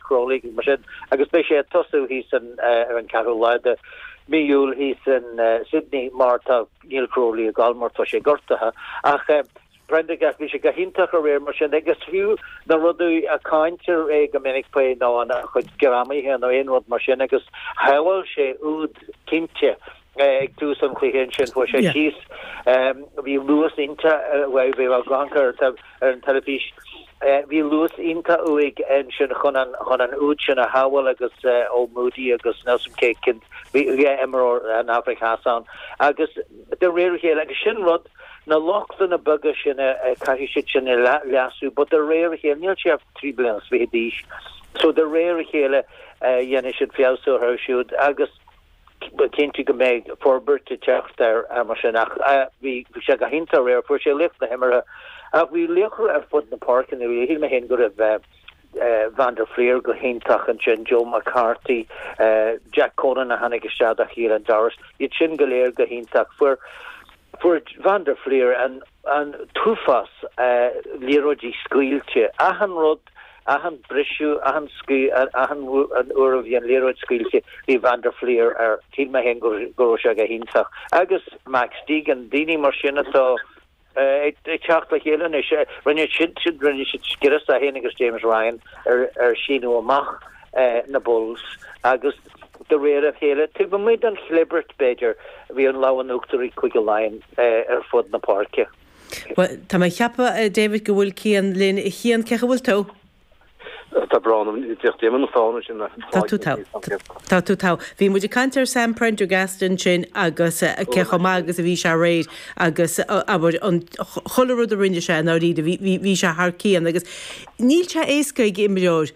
Crowley, mar sin, agus beidh sé ag tosú thíos san ar an 4ú lá de mhí Iúil thíos in Sydney mar tá níl Crowley ag gabháil mar tá sé gortaithe. Ach Prendergast, bhí sé go hiontach aréir mar sin agus fiú na rudaí a gcáintear é go minic faoi ná a chuid greamaithe nó aon rud mar sin agus shábháil sé úd cinnte Ag tús an chluiche ansin fuair sé síos, bhí luas iontach uaidh, bhí ag amharc air ar an teilifís, bhí luas iontach uaidh ansin chun an úd sin a shábháil agus ó Moodie agus níl a fhios agam cén t-imreoir ón Afraic Theas ann agus de réir a chéile, agus sin rud, na lochtanna beaga sin caithfidh siad sin a leasú, but de réir a chéile, níl sé ach trí bliana is fiche d'aois, so de réir a chéile, dhéanfaidh siad feabhsú orthu siúd agus Cinnte go mbeidh forbairt ag teacht air mar sin ach bhí sé go hiontach aréir. Fuair sé laoch na himeartha ach bhí laochra ar fud na páirce. Shíl mé féin go raibh Van der Flier go hiontach ansin, Joe McCarthy, Jack Conan a tháinig isteach do Caelan Doris. Iad sin go léir go hiontach. Fuair Van der Flier an. an t-uafás, liathróidí scaoilte, achan rud, achan briseadh, achan, achan uair a bhí an liathróid scaoilte bhí van der Flier air, shíl mé féin go raibh sé go hiontach. Agus Max Deegan, daoine mar sin atá ag teacht le chéile anois, rinne siad scrios, é féin agus James Ryan, ar síneadh amach na Bulls agus, De réir a chéile, taobh amuigh den chlibirt, b'fhéidir, a bhí an lámh in uachtar ag Cúige Laighean ar fud na páirce. Bhuel, tá mé ag ceapadh, a David, go bhfuil Cian linn. A Chian, cén chaoi a bhfuil tú? Tá brón orm, ní fhéach Damon an fána sin. Tá tú togha. Tá tú togha. Bhí muid ag caint ar Sam Prendergast ansin agus cé chomh maith agus a bhí sé aréir agus abair an chuile rud a rinne sé i ndáiríre, bhí sé thar cionn agus níl sé éasca ag imreoir,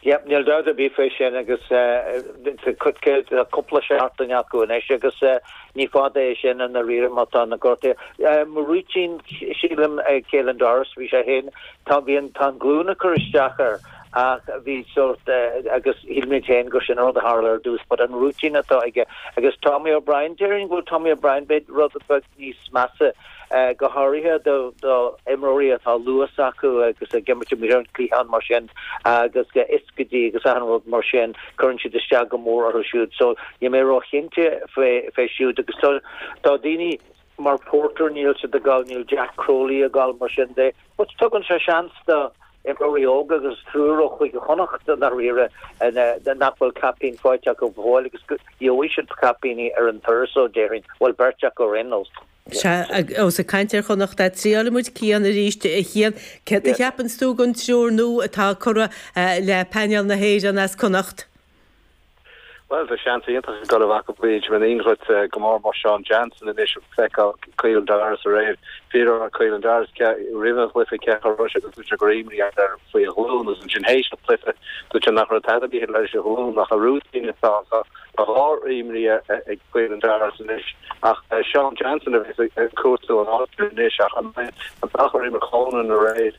Yep, níl dabht ar bith faoi sin agus tá cúpla seachtain acu anois agus ní fada é sin i ndáiríre má tá na gortuithe. An rúitín, sílim, Caelan Doris, bhí sé féin, tá, bhí an, tá an ghlúin ag cur isteach air ach bhí sórt, agus shíl mé féin gur sin an rud a tharla ar dtús but an rúitín atá aige. Agus Tommy O'Brien, déarfainn go bhfuil Tommy O'Brien, beidh rud, beidh, níos measa, go háirithe do imreoirí atá luas acu agus ag imirt amuigh ar an chliathán mar sin agus ioscaidí agus achan rud mar sin. Cuireann siad isteach go mór orthu siúd. So, níl mé róchinnte faoi siúd agus tá daoine mar Porter, níl siad ag gabháil, níl Jack Crowley ag gabháil mar sin de. But tugann sé seans do imreoirí óga agus triúr ó Chúige Chonnacht i ndáiríre nach bhfuil caipín faighte acu go fóill agus gheobhaidh siad caipíní ar an turas so déarfainn, bhuel beirt acu ar aon nós. Sea, agus ag caint ar Chonnacht, triailfidh muid Cian arís. A Chian, céard a cheapanns tú den triúr nua atá curtha le painéal na hÉireann as Connacht? Bhuel, tá seans iontach ag go leor acu, b'fhéidir, go mór mór Seán Jansen anois ag feiceáil Caelan Doris aréir. Faraor Caelan Doris ce roimh an gcluife ce chor roise agus dúradh go raibh imní air faoi a ghlúin agus ansin théis an chluife dúirt sé nach raibh tada ar bith leis a ghlúin ach a rúitín is tá tá dhá imní ag Caelan Doris anois ach Seán Jansen a bheas ag cuartú an áit sin anois ach an mbeidh an t-achar uime Conan aréir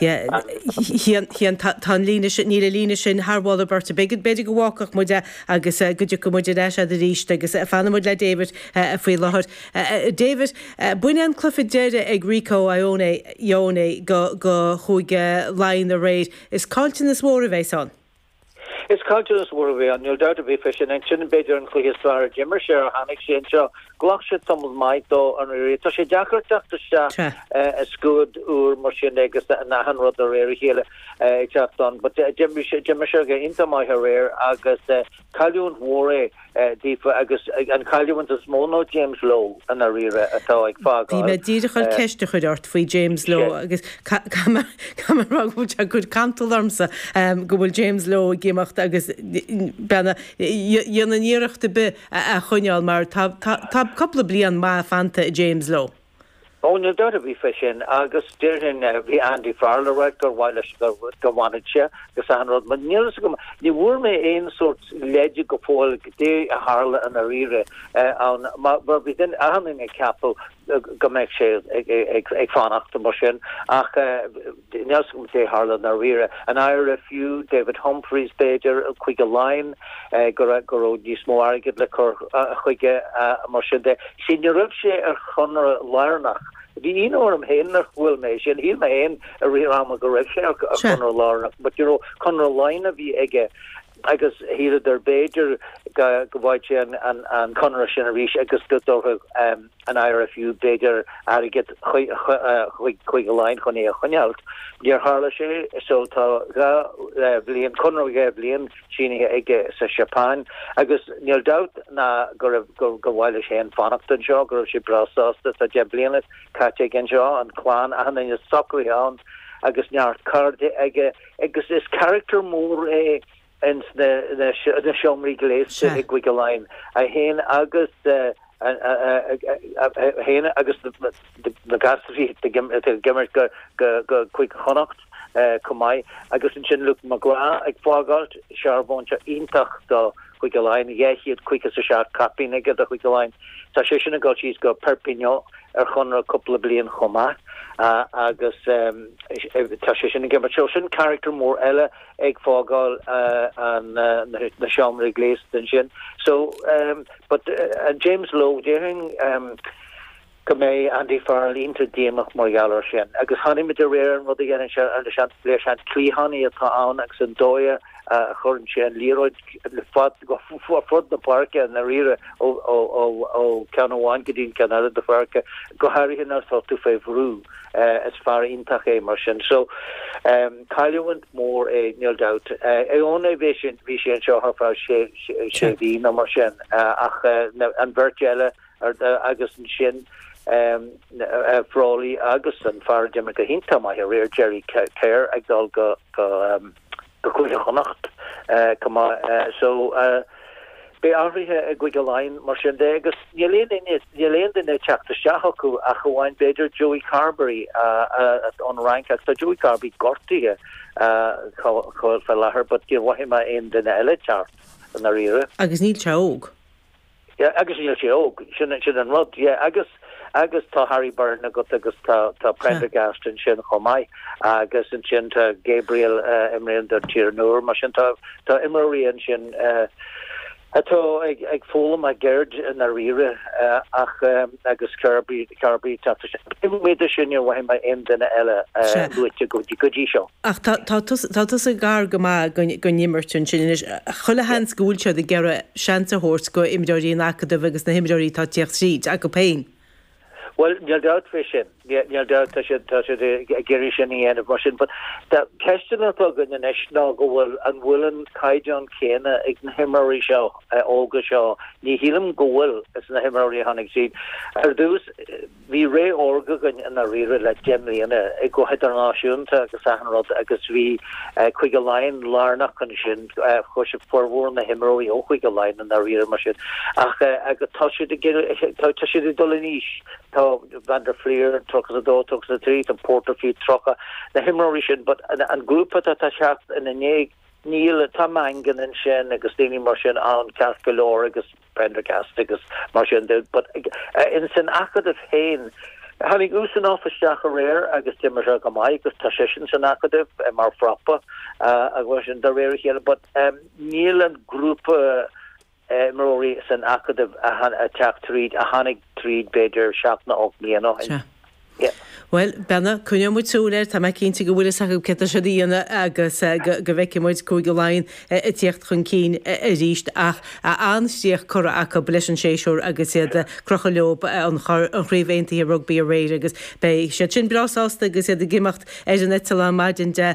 Yeah, a Chian, tá an líne sin, níl an líne sin thar mholadh i bport ar bith. B'fhéidir go bhfágfadh muid agus go dtiocfadh muid ar ais agat arís agus fanfaidh muid le David faoi láthair. David, b'in an cluiche deireadh ag Rieko Ione, Ioane, do Chúige Laighean aréir. Is caillteanas mhór a bheidh ann. Is caillteanas mhór a bheidh ann, níl dabht ar bith faoi sin. Ansin, b'fhéidir an cluiche is fearr a d'imir sé ó tháinig sé anseo. Ghlac sé tamall maith dó i ndáiríre. Tá sé deacair teacht isteach i scuad úr mar sin agus achan rud de réir a chéile ag teacht ann. But d'imir sé go hiontach maith aréir agus cailliúint mhór é. daofa agus an cailliúint is mó nó James Lowe i ndáiríre atá ag fágáil. Bhí mé díreach ag goil ceist a chur ort faoi James Lowe agus caithfidh mé a rá go bhfuil sé ag cur cantal ormsa go bhfuil James Lowe ag imeacht agus muid gan a dhéanamh iarracht ar bith é a choinneáil mar tá cúpla bliain mhaith fanta i James Lowe. Ó níl dabht ar bith faoi sin agus déarfainn, bhí Andy Farrell a ráit gur mhaith leis go bhfanfadh sé agus achan rud mar níl a fhios agam, ní bhfuair mé aon sórt leide go fóill goidé a tharla i ndáiríre ann mar bhí duine, achan duine ag ceapadh go mbeadh sé ag fanacht mar sin ach. Níl a fhios agam goidé a tharla ndáiríre. An IRFU David Humphreys, b'fhéidir, Cúige Laighean, go raibh níos mó airgid le cur chuige? Mar sin de, sea, ní raibh sé ar chonradh lárnach. Bhí ionadh orm féin nach bhfuair sé é sin. Shíl mé féin i rith ama go raibh sé ar chonradh lárnach. But you know, conradh Laighean a bhí aige agus shíleadar b'fhéidir go bhfaigheadh sé an conradh sin arís agus go dtabharfadh, an IRFU, b'fhéidir, airgead chuig Laighin chun é a choinneáilt. Níor tharla sé so tá dhá bhliain, conradh dhá bhliain sínithe aige sa Seapáin agus níl dabht ná go raibh, gur mhaith leis féin fanacht anseo, go raibh sé breá sásta. Tá deich mbliana caite aige anseo, an chlann, achan duine socraithe ann agus neart cairde aige agus is character mór é, ins na seomraí gléasta i gCúige Laighean, 1 agus 1 agus na gasraí ag imeacht go Cúige Chonnacht chomh maith. Agus ansin Luke McGrath ag fágáilt, searbhónta iontach do Chúige Laighean, 257 caipín aige do Chúige Laighean. Tá sé sin ag dul síos go Perpignan ar chonradh cúpla bliain chomh maith agus tá sé sin ag imeacht. Sin carachtar mór eile. ag fágáil na seomraí gléasta ansin. So, but James Lowe, déarfainn go mbeidh Andy Farrell iontach díomach mar gheall air sin. Agus chonaic muid aréir an rud a dhéanann sé ar na, is sean, is sean cliathánaí atá ann agus an dóigh a chuireann sé an liathróid ar fud na páirce i ndáiríre ó ó ceann amháin go dtí an ceann eile den pháirc, go háirithe nuair atá tú fé bhrú. Is fear iontach é mar sin. So, Cailliúint mhór é níl dabht. Ioane ní raibh sé anseo ach ar feadh sé mhí nó mar sin ach an bheirt eile agus ansin Frawley agus an fear a d'imir go hiontach maith aréir, Jerry Cahir ag dul go Cúige Chonnacht chomh maith so, Beidh athruithe i gCúige Laighean, mar sin de, agus níl aon duine ag teacht isteach acu ach amháin b'fhéidir Joey Carbery ón Fhrainc, ach tá Joey Carbery gortaithe fé láthair but níor mhothaigh mé aon duine eile teacht i ndáiríre. Agus níl sé óg. Agus níl sé óg, sin an rud, yeah, agus. Agus tá Harry Byrne agat agus tá tá Prendergast ansin chomh maith agus ansin tá Gabriel a imríonn do Tír an Iúir mar sin tá tá imreoirí ansin atá ag ag foghlaim a gceird i ndáiríre ach agus Carbery Carbery ag teacht ansin. Níor mhothaigh mé aon duine eile luaite go go dtí seo. Ach tá tusa gar go maith don imirt ansin anois. Chuile sheans go bhfuil siad ag iarraidh seans a thabhairt do imreoirí an acadaimh agus na himreoirí atá ag tíocht tríd, acu féin. Bhuel, níl dabht faoi sin. Níl dabht. Tá siad ag iarraidh sin a dhéanamh mar sin. But ceisteanna atá againn anois ná go bhfuil, an bhfuil an caighdeán céanna ag na himreoirí seo, óga seo. Ní shílim go bhfuil, is na himreoirí a tháinig tríd ar dtús. Bhí ré órga againn i ndáiríre le deich mbliana, go hidirnáisiúnta agus achan rud agus bhí Cúige Laighean lárnach ansin, because formhór na himreoirí ó Chúige Laighean i ndáiríre mar sin ach tá siad ag tá siad ag dul in aois, tá van der Flier tríocha a dó, tríocha a trí, tá Porter fiú tríocha, na himreoirí sin but an grúpa atá ag teacht ina ndiaidh, níl, tá Mangan ansin agus daoine mar sin ann ceart go leor agus. Prendergast agus mar sin de but in san Acadamh féin tháinig Usanov isteach aréir agus d'imir sé go maith agus tá seisean san Acadamh mar phrápa agus mar sin de réir a chéile but níl an grúpa imreoirí san Acadamh a teacht tríd a tháinig tríd b'fhéidir seacht nó ocht mbliana ó shin. Yep. Bhuel, Bernard, coinneoidh muid súil air, tá mé cinnte go bhfuil fhios acu cé atá siad a dhéanamh agus go bhfeicfidh muid Cúige Laighean ag teacht chun cinn arís. Ach an-chríoch curtha acu leis an séasúr agus iad ag crochadh leo an Chraobh Aontaithe Rugbaí aréir agus beidh siad sin breá sásta agus iad ag imeacht ar an eiteall maidin de